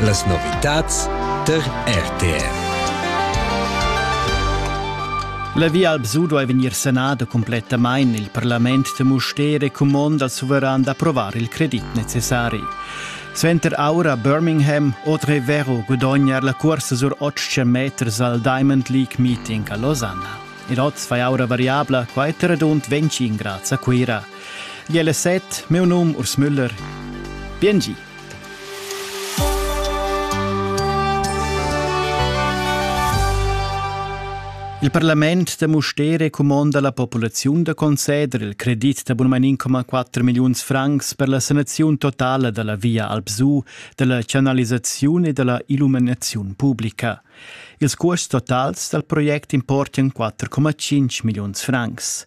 Las novitads tar RTR. La Via Alpsu duai vegnir sanada cumplettamain. Il parlament de Mustér è cumond al suveran d'approvar il credit necessari. Suenter aura Birmingham Autre Vero gudognar la cursa sur 800 meters al Diamond League Meeting a Losanna. Il odds fai aura variabla quai radund 25 grads a Cuira. Gliela set, meu num Urs Müller. Biengi. Il parlament da Mustere cumonda la populaziun da conceder il credit da bunmanin 1,4 milliuns francs per la sanaziun totala dalla via Alpsu, dalla canalisaziun e dalla illuminaziun publica. Ils cuosts totals dal project importan 4,5 milliuns francs.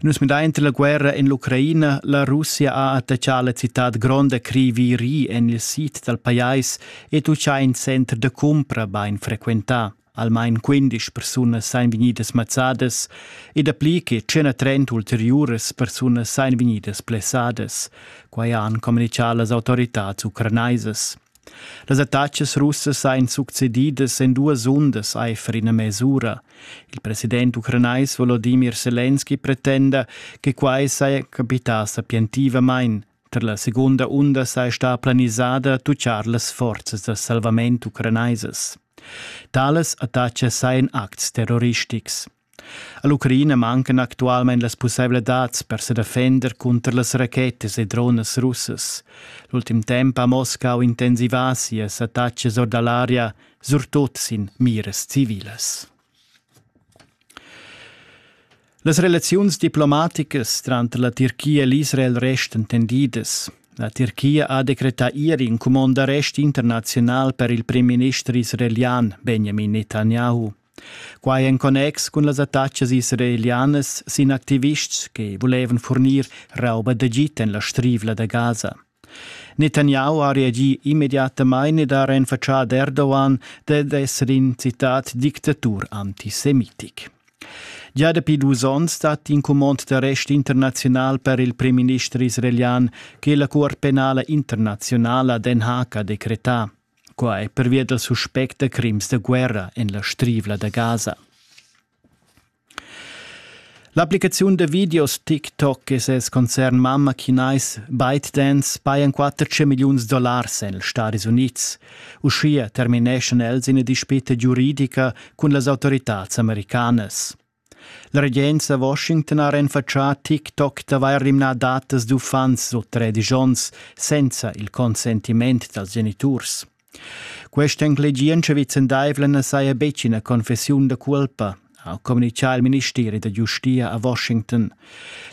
Nus midain la guerra en l'Ucraina. La Russia ha attaccà la citad gronda Kriviri en il sid dal pajais ed uschè in center da cumpra bain frequentà. Almain quindisch persunas sain vegnidas mazzadas e dapli che 130 ulteriuras persunas sain vegnidas blessadas. Quai han communichà las autoritads ucranaisas. Las attacas russas ein succedidas en duas undas aifer ina mesura. Il president ucranais Volodimir Selenski pretenda che quai saja capità sapientivamain. Tar la segunda unda sei sta planisada tucciar las forzas da salvament ucranaisas. Tales attacas sajan acts terroristics. All'Ucraina mancan actualmein las pusseivladads per sedefender cunter las rachetas e dronas russas. L'ultim temps ha Moscau intensivà sias attacas or dall'aria, surtut sin miras civilas. Las relaziuns diplomaticas tranter la Tirchia e l'Israel restan tendidas. La Tirchia ha decretà ieri in cumond d'arrest internaziunal per il prim minister israelian Benjamin Netanyahu. Quai en connex cun las attachas israelianas sin activists che vulevan furnir rauba d'agid en la strivla da Gaza. Netanyahu ha reagì immediatamain ed ha renfatschà Erdogan dad esser in citat dictatur antisemitic. Già dapi dus onns dat in cumond d'arrest internaziunal per il primminister israelian che la Cuort penala internazionala Den Haag ha decretà. Quai è pervia dal suspect da crims da guerra en la Strivla da Gaza. L'applicaziun da videos TikTok e ses concern mamma chinais ByteDance pajan 14 milliuns dollars en els Stati Unids. Uschia termineschan els ina dispita giuridica cun las autoritads americanas. La regenza a Washington ha renfatschà TikTok d'avair rimnà datas d'uffants sut tredisch onns senza il consentiment dals geniturs. Questa enclegientscha vicendaivla na saja betg ina confessiun da culpa, ha communitgà il ministeri da giustia a Washington.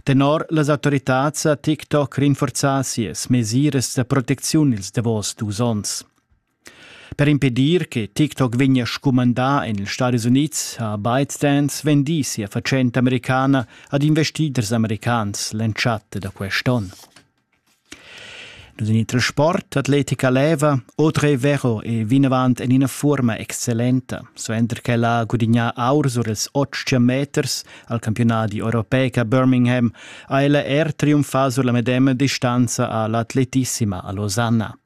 Tenor las autoritads ha TikTok rinforzà sias mesiras da protecziun ils davos dus onns. Per impedir che TikTok vegnia scumandà en ils Stadis Unids ha ByteDance vendì sia fatschenta americana ad investiders americans l'entschatta da quest onn. Nus en il transport atletica leva Audrey Vero è vinavant en ina forma excellenta, suenter ch'ella ha gudignà aur sur ils 800 meters al campionadi europeic a Birmingham ha ella er triumfà sur la medema distanza a l'atletissima a Losanna.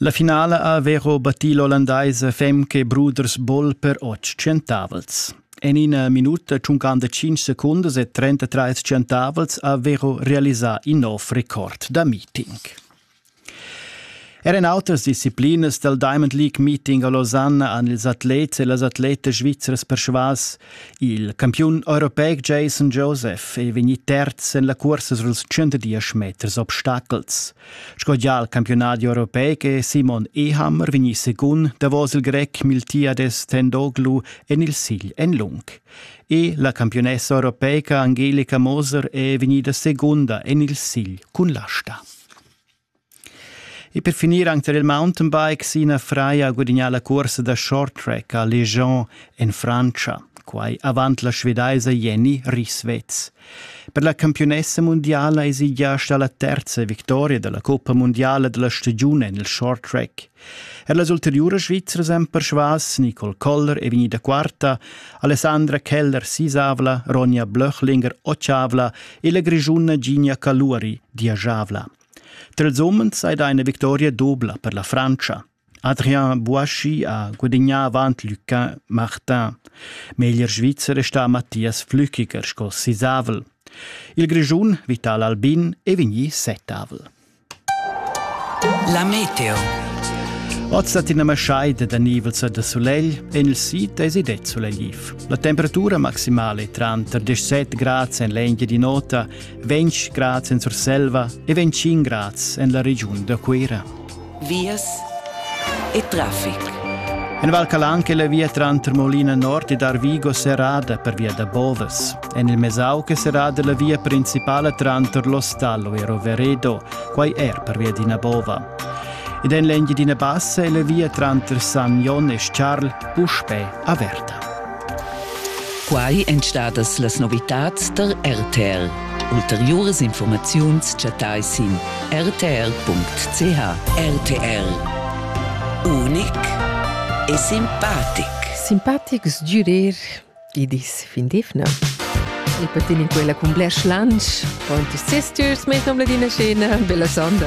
La finala ha Vero battì l'ollandaisa Femke Bruders-Boll per otg tschientavels. En ina minuta tschuncanda tschintg secundas e 33 tschientavels ha Vero realisà in nov record da meeting. Er en autras disciplinas dal Diamond League Meeting a Lausanne han ils atlets e las atletas svizras persvas il campiun europeic Jason Joseph è vegnì terz en la cursa suls 110 meters obstacels. Sco gia al campiunadi europeic è Simon Ehammer vegnì secund davos il grec Miltiades Tendoglu en il sigl en lung. E la campiunessa europeica Angelica Moser è vegnida segunda en il sigl cun l'asta. E per finir anche tar il mountainbike, Sina Freya ha gudagnà la cursa da short track a Legion en Francia, quai avant la svedaisa Jenny Rieswetz. Per la campiunessa mundiala esi gia stà la terza victoria dalla coppa mundiala dalla stagiun en il short track. Er las ulteriuras svizras han persvas Nicole Koller è vegnida quarta, Alessandra Keller sisavla, Ronja Blöchlinger otschavla e la grischuna Gina Caluari diajavla. Tra ils umens è da eine Victoria dubla per la Francia. Adrian Buaschi ha gudignà avant Luca Martin. Meglier Svizzer è stà Mathias Flückiger sco sisavel. Il Grischun Vital Albin è vegnì settavel. La meteo. Oz dat ina maschaida da nivels da sulegl en il sid esi det sulegliv. La temperatura maximale è tranter 17 grads en l'Engia di Nota, 20 grads en Surselva e 25 grads en la regiun da Cuira. vias e traffic. En Val Calan che la via tranter Molina Nord ed Arvigo serrada per via da Boves. En il Mesau che serrada la via principala tranter l'Ostallo e Roveredo, quai er per via d'ina bova. Ed en l'engine d'ina bassa è la via tranter San Jon e Charl puspè averta. Quai èn stadas las novitads tar RTL. Ulteriuras informaziuns chattai sin rtr.ch. RTL. Unic e simpatic. Simpatics d'urir, i dis fin d'evna. E patin in quella cun blers lunch, pon ti sisters, mettons la dina scena, bella sonda.